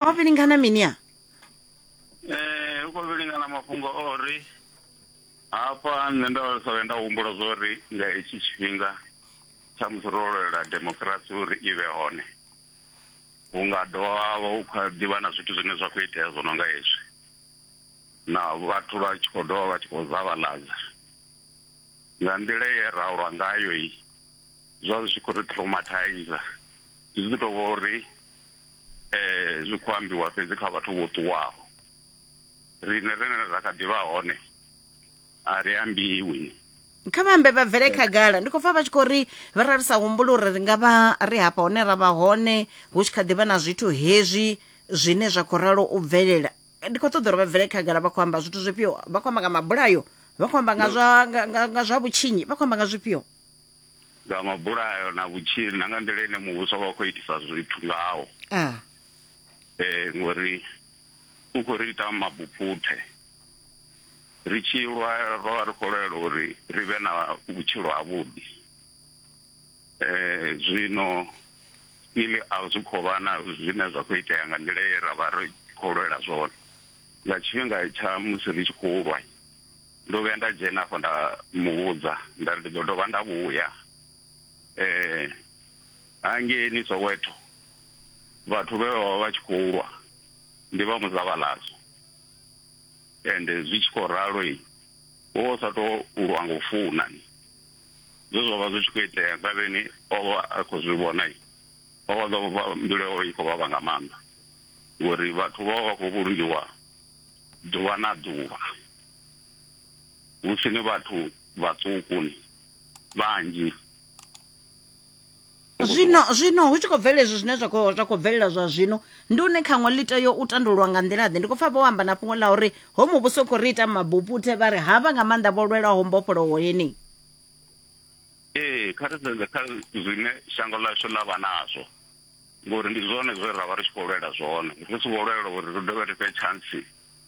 o vhilingana mini a eh u khou vhilingana mafhungo o ri hafha nṋe nda sa vhe nda humbula zwo ri nga hetshi tshifhinga tsha musi ro lwela demokirasi uri i vhe hone hu nga dovha ha vha hu kha ḓivha na zwithu zwine zwa khou itea zwo no nga hezwi na vhathu vha tshi khou dovha vha tshi khou zavhaladza nga nḓila ye ra lwa ngayo i zwa zwi tshi khou ri traumatizer zwi ḓi tou vha uri eh zwi khou ambiwa fhedzi kha vhathu vho ṱuwaho rine rine ra kha ḓivha hone a ri ambiwi kha vha ambe vha bvele khagala ndi khou pfa vha tshi khou ri vha ra ri sa humbula uri ri nga vha ri hafha hone ra vha hone hu tshi kha ḓivha na zwithu hezwi zwine zwa khou ralo u bvelela ndi khou ṱoḓa uri vha bvele khagala vha khou amba zwithu zwifhio vha khou amba nga mabulayo vha khou amba nga zwa nga, nga, nga zwa vhutshinyi vha khou amba nga zwifhio nga mabulayo na vhutshili na nga nḓila ine muvhuso vha khou itisa zwithu ngawo um ngori u khou ri ita mabuphuthe ri tshi lwa ro vha ri khou lwela uri ri vhe na vhutshilo havhuḓi um zwino ili a zwi khou vha na zwine zwa khou itea nga nḓila ye ra vha ri khou lwela zwone nga tshifhinga tsha musi ri tshi khou lwa. Ndo vhuya nda dzhena afho nda muvhudza nda ri ndi ḓo dovha nda vhuya eh hangeni Soweto vhathu vhe vha vha vha tshi khou lwa ndi vha muzavhalazo ende zwi tshi khou ralo i wo vha u sa tou lwa nga u funa ni zwe zwa vha zwi tshi khou itea ngavheni o vha a khou zwi vhona i o vha ḓo vha mbilu yawe i khou vhavha nga maanḓa ngori vhathu vha vha vha khou vhulungiwa ḓuvha na ḓuvha. hu si ni vhathu vhaṱuku ni vhanzhi zwino zwino hu tshi khou bvelela izwi zwine zwa khou zwa khou bvelela zwa zwino ndi une khaṅwe ḽi tea u tandululwa nga nḓila ḓe ndi khou pfa vho amba na fhungo ḽa uri ho muvhuso u khou ri ita mabuputhe vha ri havha nga maanḓa vho lwelaho mbofholowo yeneyi ee kha ri sedze kha zwine shango ḽashu ḽa vha nazwo ngori ndi zwone zwe ra vha ri tshi khou lwela zwone ri si vho lwela uri ri dovhe ri fhe tshantsi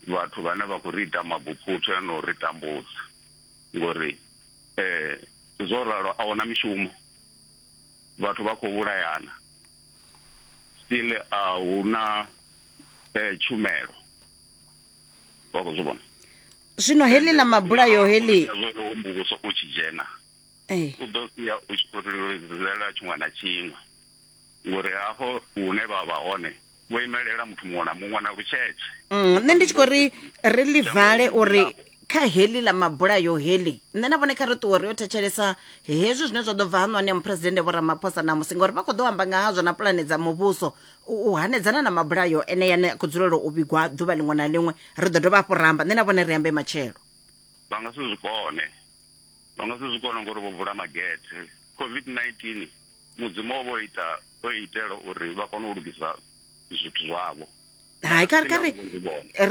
vhathu vhane vha khou ri ita mabuphutha na u ri tambudza ngori um zwo ralo a huna mishumo vhathu vha khou vhulayana still a huna um tshumelo vha khou zwi vhona zwino heḽi ḽa mabulayo heḽi muvhuso u tshi dzhena u ḓo sia u tshi khou ri lelwa tshiṅwe na tshiṅwe ngori hafho hune vha vha hone vho imelela muthu muṅwe na muṅwe na lutshetshe mm, nṋe ndi tshi khou ri ri ḽi vale uri kha heḽi ḽa mabulayo heḽi nṋe na vhone kha ri ṱuwe ri yo thetshelesa hezwi zwine zwa ḓo bva ha ṋwani ya muphuresidennde vho ramaphosa ṋamusi ngauri vha khou ḓo amba nga hazwo na pulane dza muvhuso u hanedzana na mabulayo ene yane a khou dzulela u vhigwa ḓuvha ḽiṅwe na ḽiṅwe ri ḓo dovha hafhu ramba nṋe na vhone ri ambe matshelo vha nga si zwi kone vha nga si zwi kone ngori vho vula magethe covid-19 Mudzimu o vha o ita o itela uri vha kone u lugisa zwithu zwavho hai kha kha ri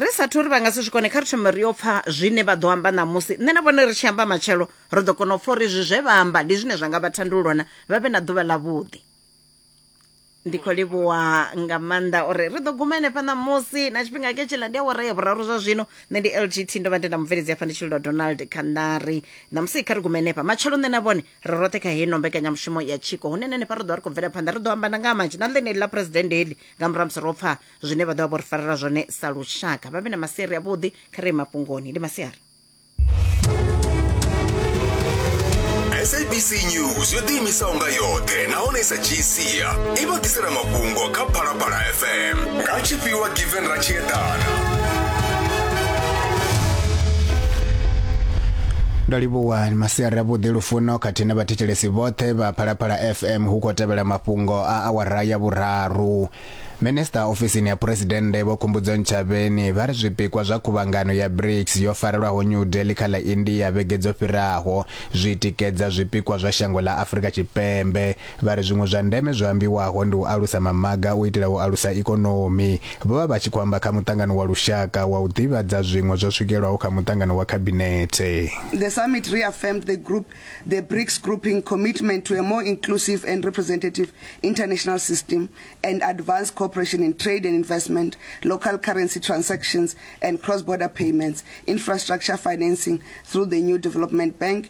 ri sa thori vha nga si zwi kone kha ri thome ri yo pfha zwine vha ḓo amba ṋamusi nṋe na vhone ri tshi amba matshelo ri ḓo kona u pfha uri izwi zwe vha amba ndi zwine zwa nga vha thandulona vha vhe na ḓuvha ḽavhuḓi ndi khou livhuwa nga maanḓa uri ri ḓo guma henefha ṋamusi na tshifhinga ke tshiḽa ndi awara ya vhuraru zwa zwino nṋe ndi lgt ndo vha ndi na mubveledzi afha ndi tshililo donald khandari ṋamusi kha ri gume henefha matshelo nṋe na vhone ri roṱhe kha heino mbekanyamushumo ya tshiko hune nene pa ri ḓo ri khou bvela phanḓa ri ḓo amba na nga ha manzhi na ḽeneli ḽa phuresidennde heḽi nga murahu musi ro pfa zwine vha ḓo vha vho ri farela zwone sa lushaka vha vhe na masiari avhuḓi kha re mafhungoni ndi masiari sabc news yo ḓiimisaho nga yoṱhe nahone i sa dzhii sia i vha ḓisela mafhungo kha phalaphala fm nga tshifhiwa Sendra Tshiedana. ndo livhuwa ni masiari avhuḓi lufuno khathihi na vhathetshelesi vhoṱhe vha phalaphala fm hu khou tevhela mafhungo a awara ya vhuraru minista ofisini ya phuresidennde vho khumbudzo ntshavheni vha ri zwipikwa zwa khuvhangano ya brics yo farelwaho new delhi kha ḽa india vhege dzo fhiraho zwi tikedza zwipikwa zwa shango ḽa afrika tshipembe Vha ri zwiṅwe zwa ndeme zwo ambiwaho ndi u alusa mamaga u itela u alusa ikonomi. Vho vha vha tshi khou amba kha muṱangano wa lushaka wa u ḓivhadza zwiṅwe zwo swikelwaho kha muṱangano wa khabinethe. The summit reaffirmed the group, the BRICS grouping commitment to a more inclusive and representative international system and advance cooperation in trade and investment, local currency transactions and cross-border payments, infrastructure financing through the new development bank